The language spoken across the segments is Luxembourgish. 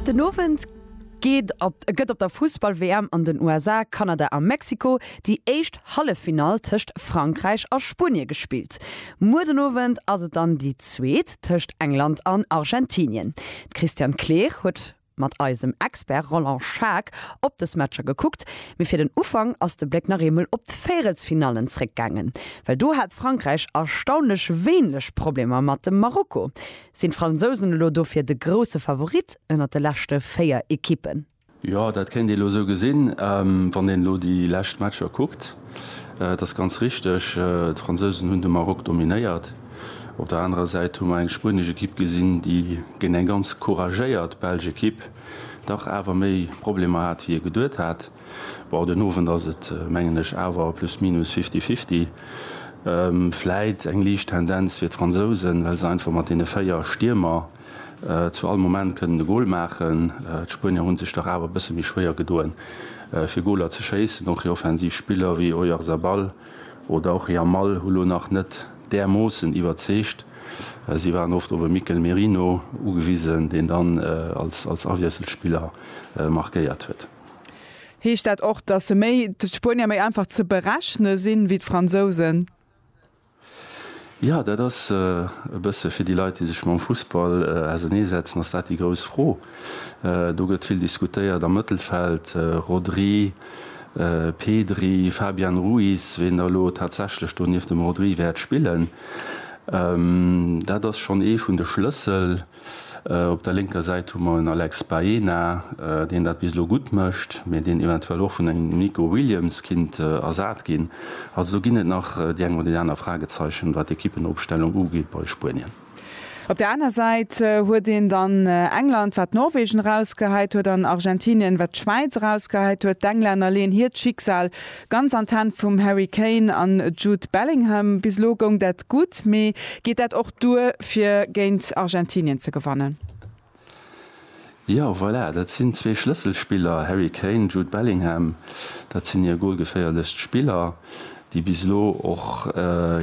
Den Owend geet op gëtt op der Fussball-WM an den USA, Kanada a Mexiko déi éischt Halleffinall tëscht Frankräich a Spuenie gespillt. Muer den Owend ass et dann déi zweet tëscht England an Argentinien. D'Christiane Kleer huet mat eisem Expert Roland Schaack op dës Matcher gekuckt. Mee fir den Ufank ass de Bléck nach eemol op d'Véierelsfinallen zréckgaangen. Well do hat Frankräich erstaunlech wéinlech Problemer mat dem Marokko. Sinn d'Fransousen elo dofir de grousse Favorit ënnert de leschte 4 Ekippen? Jo, dat kéint ee elo esou gesinn, wann een elo déi lescht Matcher kuckt. Et ass ganz richteg, d'Fransousen hunn de Maroc dominéiert. Op der anerer Säit hu mer eng spuenesch Ekipp gesinn, déi géint eng ganz couragéiert belsch Ekipp dach awer méi Problemer hat, wéi ee geduet hat. Bon, den Owend ass et, mengen ech, awer plus minus fifty fifty. Vläit eng liicht Tendenz fir d'Fransousen, well se einfach mat deene véier Stiermer zu all Moment kënnen e Gol maachen. D'Spuenier hu sech dach awer e bësse méi schwéier gedoen, fir Goler ze schéissen. Och hir offensiv Spiller wéi Oyarzabal oder och Yamal hu lo nach net därmoossen iwwerzeegt. Si waren oft op e Mikel Merino ugewisen, deen dann als Awiesselspiller markéiert huet. Heescht dat och, datt se méi, d'Spuenier, méi einfach ze berechne sinn, wéi d'Fransousen? Jo, dat ass e bësse fir déi Leit, déi sech mam Fussball auserneesetzen, ass dat déi grouss Fro. Do gëtt vill diskutéiert am Mëttelfeld, Rodri, Pedri, Fabian Ruiz, wien da elo tatsächlech do nieft dem Rodri wäert spillen. Dat ass schonn ee vun de Schlëssel. Op der lénker Säit hu mer en Alex Baena, deen dat bis elo gutt mécht, mee deen eventuell och vun engem Nico Williams kinnt ersat ginn. Also do ginn et nach déi eng oder déi aner Fragezeichen, wat d'Equippenopstellung ugeet bei Spuenien. Op der aner Säit huet een dann England, wat Norwegen erausgehäit huet, an Argentinien, wat d'Schwäiz erausgehäit huet. D'Englänner leeën hiert Schicksal Ganz an d'Hänn vum Harry Kane an Jude Bellingham. Bis elo goung dat gutt, mee geet dat och duer fir géint Argentinien ze gewannen? Jo, voilà, dat sinn zwee Schlësselspiller, Harry Kane, Jude Bellingham. Dat sinn hir golgeféierlechst Spiller, déi bis elo och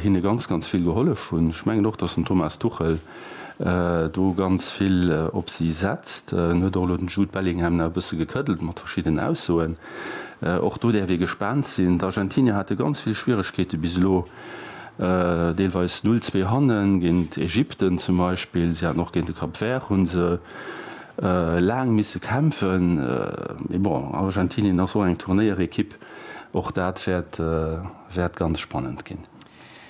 hinne ganz, ganz vill gehollef hunn. Ech mengen och, datt den Thomas Tuchel do ganz vill op si setzt. En huet och elo den Jude Bellingham nach e bësse gekëddelt mat verschiddenen Aussoen. Och do däerf ee gespaant sinn. D'Argentinier hate ganz vill Schwieregkeete bis elo, deelweis null zwee hannen, géint Ägypten zum Beispill. Si haten och géint de Cap Vert hu se laang misse kämpfen. Mee bon, Argentinien ass och eng Turnéierekipp, och dat wäert ganz spannend ginn.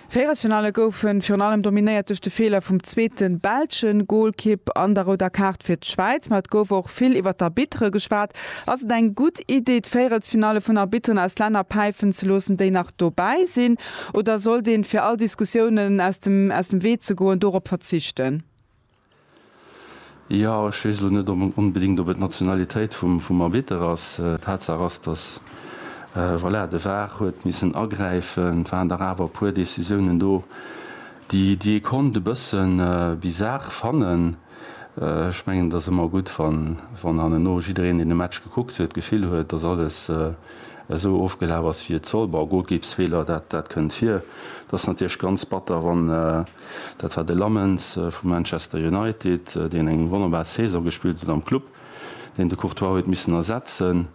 Véierelsfinalle goufen virun allem dominéiert duerch de Feeler vum zweeten belschen Goalkipp an der rouder Kaart fir d'Schwäiz. Ma et gouf och vill iwwert d'Arbitre geschwat. Ass et eng gutt Iddi d'Véierelsfinalle vun Arbitteren aus Länner päifen ze loossen déi nach dobäi sinn? Oder sollt een fir all Diskussiounen aus dem Wee ze goen dorop verzichten? Jo, ech weess elo net onbedéngt, ob et d'Nationalitéit vum Arbitter ass. Tatsaach ass, datt, voilà, de var huet missen agräifen. Et waren dach awer e puer Decisiounen do, déi ee konnt e bësse bizar fannen. Ech mengen, et ass ëmmer gutt, wann hanneno jiddereen, deen de Match gekuckt huet, d'Gefill huet, datt alles esou ofgelaf ass, wéi et soll. Bon, Golkippsfeeler, dat kënnt vir. Et ass natierlech ganz batter, wann. Dat war de Lammens vu Manchester United, deen eng wonnerbar Saison gespillt huet am Club, deen de Courtois huet missen ersetzen,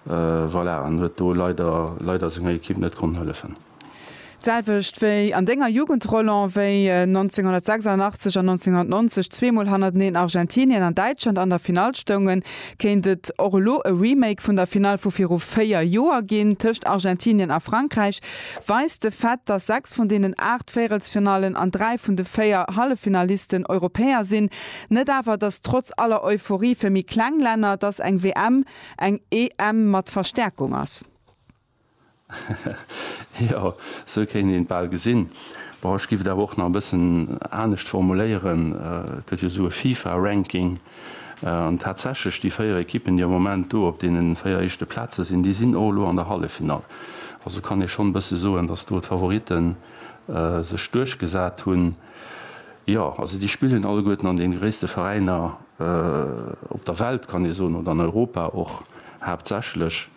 voilà, an huet do leider, leider senger Ekipp net konnt hëllefen. D'selwecht wéi an denger Jugend, Roland, wéi 1986 an 1990 zweemol hannerteneen Argentinien an Däitschland an der Finall stoungen, kéint et och elo e Remake vun der Finall vu viru véier Joer ginn tëscht Argentinien a Frankräich, weist de Fait, datt 6 vun deenen 8 Véirelsfinallen an 3 vun de 4 Halleffinalisten Europäer sinn, net awer, datt trotz aller Euphorie fir méi kleng Länner, datt eng WM eng EM mat Verstäerkung ass. Jo, sou kéint een et bal gesinn. Bon, ech giff et awer och nach e bëssen anescht formuléieren. Et gëtt jo esou e FIFA-Ranking. An tatsächlech, déi véier Ekippen, déi am Moment do op deene véier éischte Plaze sinn, déi sinn och elo an der Halleffinall. Also kann ee schonn e bësse soen, datt do d'Favorite sech duerchgesat hunn. Jo, also déi spillen alleguerten an deene gréisste Veräiner op der Welt, kann ee soen, oder an Europa och haaptsächlech.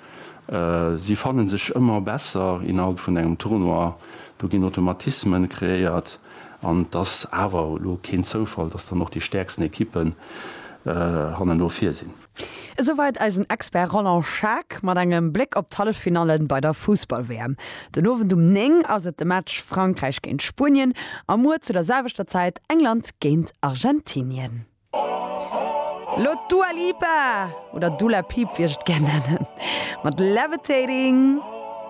Si fanne sech ëmmer besser innerhalb vun engem Tournoi. Do ginn Automatismen kreéiert. An et ass awer elo keen Zoufall, datt dann och déi stäerksten Ekippen hannen no vir sinn. Esouwäit eisen Expert Roland Schaack mat engem Bléck op d'Halleffinalle bei der Fussball-WM. Den Owend um 9 ass et de Match Frankräich géint Spuenien a muer zu der selwechter Zäit England géint Argentinien. Elo d'Dua Lipa, oder Dula Piip wéi ech et gär nennen, mat Levitating.